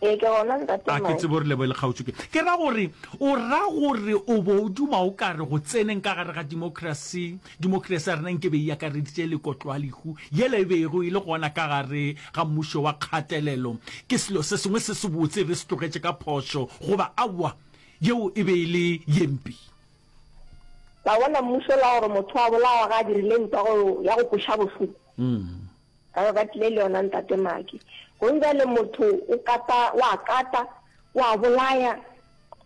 Ee, ke gona ntate A ke Mike. tsebe o re leboge le kgaotšo ke. Ke ra gore, o ra gore o bo o duma o ka re go tseneng ka gare ga democracy, democracy ya rena nke be e akareditše le kotloalehu yela e bego e le gona ka gare ga mmušo wa kgatelelo. Ke selo se sengwe se sebotse re se tlogetše ka phošo goba aowa yeo e be e le ye mpe? La bona mmušo la gore motho a bolawa ga a dirile ntwa go ya go kweša bohloko. Ba be ba tlile le yona ntate Maki. Go njale motho o kata, wa kata, wa bolaya.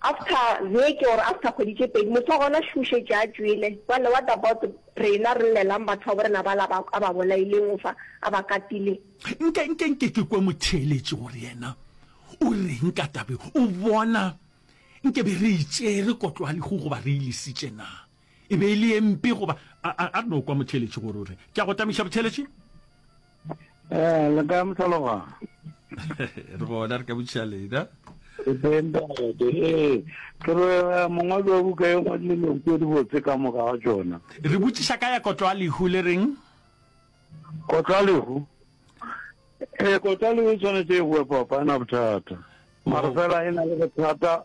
After veke or after kgwedi tše pedi, motho wa gona šušetše a tšwele. Jale what about rena re llelang batho ba borena ba la a ba bolaileng o fa, a ba katile? Nke, nke, nke ke kwe motheeletši gore yena o reng ka tabe. O bona, nke be re itšere kotlo ya lehu goba re e lesitše naa? e be e le empe goba a no kwa motheletši gore o re ke a go tamiša botheletši um le ka motlhaloga re gona re ka botšiša lena ee ke re eh, mongwadi wa buka e ngwadile leng tse di botse ka moka ga tsona re botšiša ka ya kotlo a lehu le reng kotlo a lehu ee kotlo a lehu e tshwanetse e boe papana bothata mara fela e na le bothata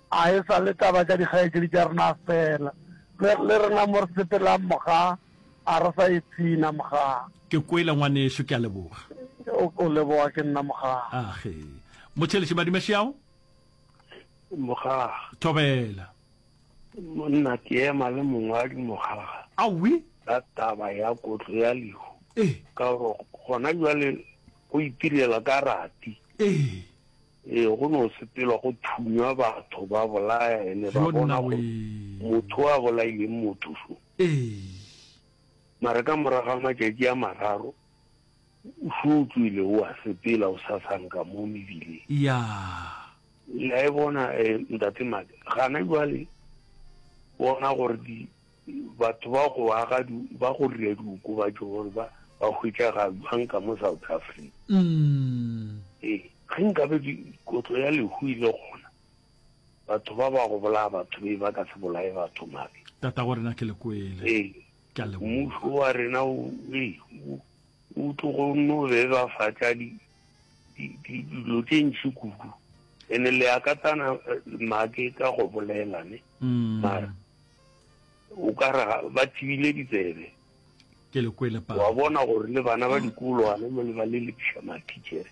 A e sa le taba tša dikgaetšedi tša rena feela, le, le rena mo re sepelang moga, a re sa ipshina moga. Ke kwele, ngwanešu. Ke a leboga. O, o leboga ke nna moga. Age. Motšheletše Madimašiao? Moga. Thobela. Monna, ke ema le mongwadi moga. Awi? Ka taba ya kotlo ya lehu. Ee. Ka gore gona jwale go itirela ka rati. Ee. Ee, go no sepelwa go thunywa batho, ba bolaya, ene ba bona gore motho o a bolaileng motho so. Mare ka morago ga matšatši a mararo, o so o tswile o a sepela o sasanka mo mebileng. Le a e bona, Ntate Maka? Gana jwale bona gore di, Batho ba go aga ba go dira diokobatšo gore ba ba hwetšaga jwang ka mo South Africa. Ee, ge nkabe kotlo ya lehu e le gona, batho ba ba go bolaya batho be ba ka se bolaye batho mabe. Tatago rena ke le kwele. Ee, ke a leboga. Mmušo wa rena o o tlogo no bebafatša dilo tše ntši kudu ene le akatana make ka go bolelane mara o ka re ba thibile ditsebe ke le kwele pa wa bona gore le bana ba dikolo ane mo le ba le lepša mathichere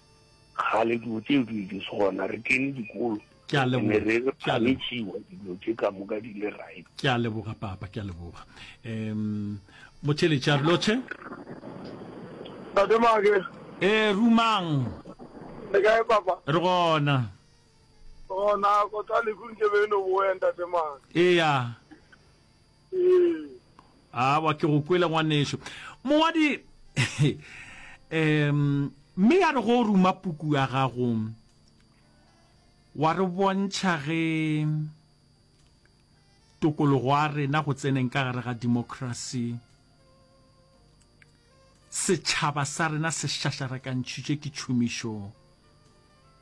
kgale dilo tseo di di se gona re kene dikolo ke a leboga re re phamitsiwa dilo tse ka moka di le right ke a leboga papa ke a leboga em mochele charlotte Tate Mage. Eh rumang. Le kae papa? Re gona. Oh, nako tsa lehu nke be e no boya ntate mang. Eya. Ee. Awa ke go kwele ngwaneso. Mongwadi em mme ya re go ruma puku ya gago wa re bontšha ge tokologo ya rena go tseneng ka gare ga democracy setšhaba sa rena se šašarakantšhitšwe ke tšhomišo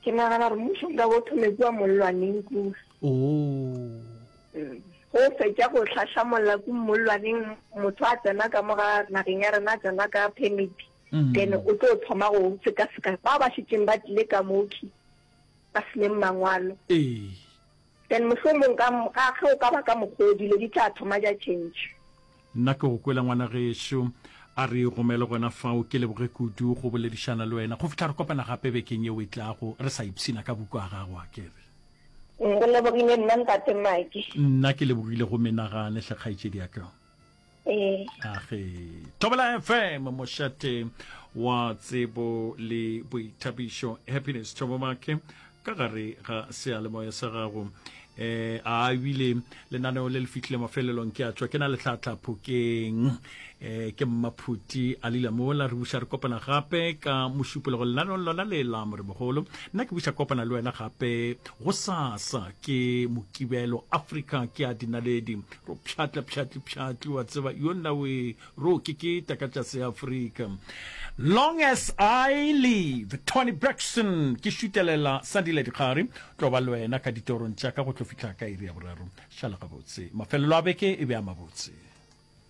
Ke nagana gore mmušo nka bo thome kua mollwaneng kua. Oh. Go fetša go hlahlamolla ku mollwaneng motho a tsena ka mo ga nageng ya rena a tsena ka permit. Mm. Then o tlo thoma go sekaseka ba ba šetšeng ba tlile ka moki ba se leng mangwalo. Ee. Then mohlomong ka, ka, ge o ka ba ka mokgw'o, dilo di tla thoma tša change. Nna ke go kwela ngwana gešo, a re romele gona fao, ke leboge kudu go boledišana le wena. Go fihla re kopana gape bekeng yeo e tlago, re sa ipshina ka buku a gago, a ke re. Re lebogile, nna ntate Maki. Nna ke lebogile go menagane, hle kgaetšediaka. age thobela fm mošate wa tsebo le boithabišo happiness thobomake ka gare ga sealemoya sa gago eh a ebile lenaneo le le fitlhile mafelelong ke a tswa ke na letlhatlha phokeng eh ke mmaphuti a lila mola re buša re kopana gape ka mošupologo lenaneong lona le la morebogolo nna ke buša kopana le wena gape go sasa ke mokibelo africa ke a dinaledi Tlo pšhatla pšhatli pšhatli wa tseba yo nna we ro ke ke ta ka tšase ya Afrika long as I live Tony Braxton ke šutelela Sandile Dikgari tlo ba lwena ka ditorong tša ka go tlo fihla ka iri ya boraro šala gabotse mafelelo a beke e be a mabotse